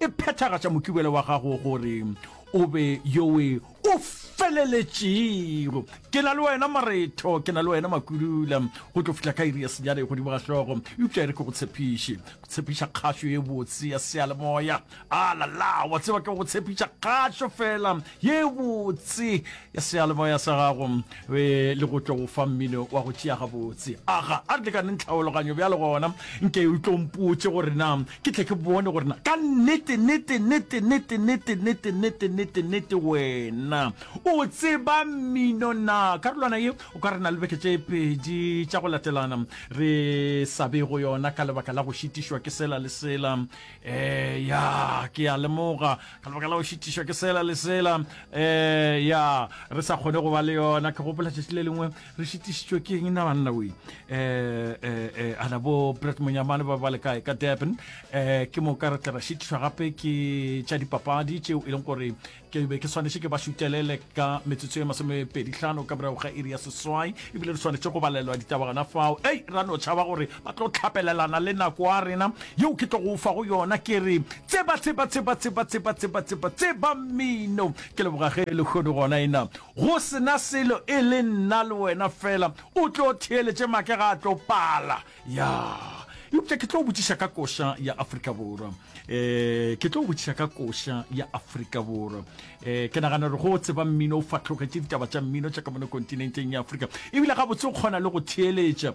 e phethagatša mokibelo wa gago gore o be yowe o feleletšego ke na le wena maretho ke na le wena makulula go tlo fihla ka iri ya senyane godimo ga hlogo eupša e re ke go tshepiše go tshepiša kgašo e botse ya sealemoya a lala wa tseba ke go tshepiša kgašo fela ye botse ya seyalemoya sa gago be le go tlo go fa mmino wa go tšea gabotse aga a re lekaneng tlhaologanyo bjale gona nke o tlo mpotse gore na ke tle ke bone gore na ka nnete nnete nnete nnete nnete nnete nnete nnete nnete wena o tseba mmino na karolwana ye o ka re na le beke tše pedi tša go latelana re sa be go yona ka lebaka la go šitišwa ke sela le sela eh ya ke a lemoga ka lebaka la go šitišwa ke sela le sela eh ya re sa kgone go ba le yona ke gopola tšatši le lengwe re šitišitšwe ke eng na banna we eh eh eh ana bo Brett Monyamane ba ba le kae ka Durban eh ke mo ka re tla ra šitišwa gape ke tša dipapadi tšeo e leng gore ke be ke swanetše ke ba šutelele ka metsotso ye masomepedihlano ka morago ga iri ya seswai ebile re swanetše go balelwa ditaba gona fao ei ra no tšhaba gore ba tlo tlhapelelana le nako a rena yeo ke tlogo fa go yona ke re tseba tseba tseba tseba tseba tseba tseba tseba mmino ke leboga ge e lekgodu gona ena go sena selo e le nna le wena fela o tlo theeletše make ga a tlo pala ya eupša ke tlo botšiša ka koša ya afrika borwa um ke tlo botšiša ka koša ya afrika borwa um ke nagana gore go tseba mmino o fatlhogetše ditaba tša mmino tša ka mone kontinenteng ya afrika ebile ga botse o kgona le go theeletša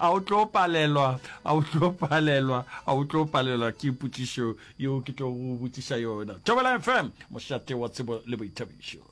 a o tlo palelwa a o tlo palelwa a o tlo palelwa ke potšišo yeo ke tlo go botšiša yona tobela fm mošate wa tsebo le boithabišo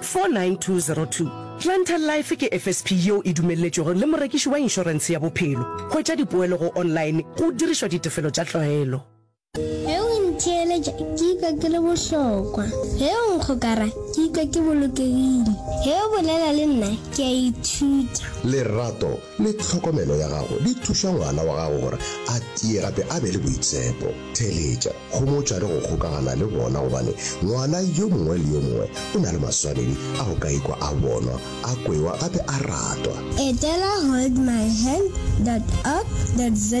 49202. Planter Life ke FSP yeo e dumelletšwego le morekiši wa inšorense ya bophelo. Hwetša dipoelo go online go dirišwa ditefelo tša tlwaelo. Ge o ntheeletša ke ikwa ke le bohlokwa. Ge o nkgokara ke ikwa ke bolokegile. Ge o bolela le nna ke a ithuta. Lerato le tlhokomelo ya gago di thuša ngwana wa gago gore a tie gape a be le boitshepo. Theeletša, homotša le go kgokagana le bona gobane ngwana yo mongwe le yo mongwe o na le maswanedi a go ka ikwa a bonwa, a kwewa gape a ratwa. Etela holdmyhand dot org dot za.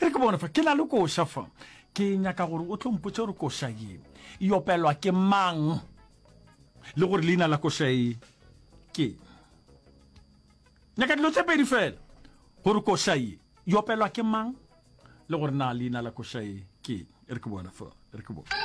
E re ke bone fa, ke na le koša fa. Ke nyaka gore o tlo mpotse gore koša ye e opelwa ke mang le gore leina la koša e ke. Nyaka dilo tse pedi fela gore koša ye e opelwa ke mang le gore na leina la koša e ke. E re ke bone fa, e re ke bone.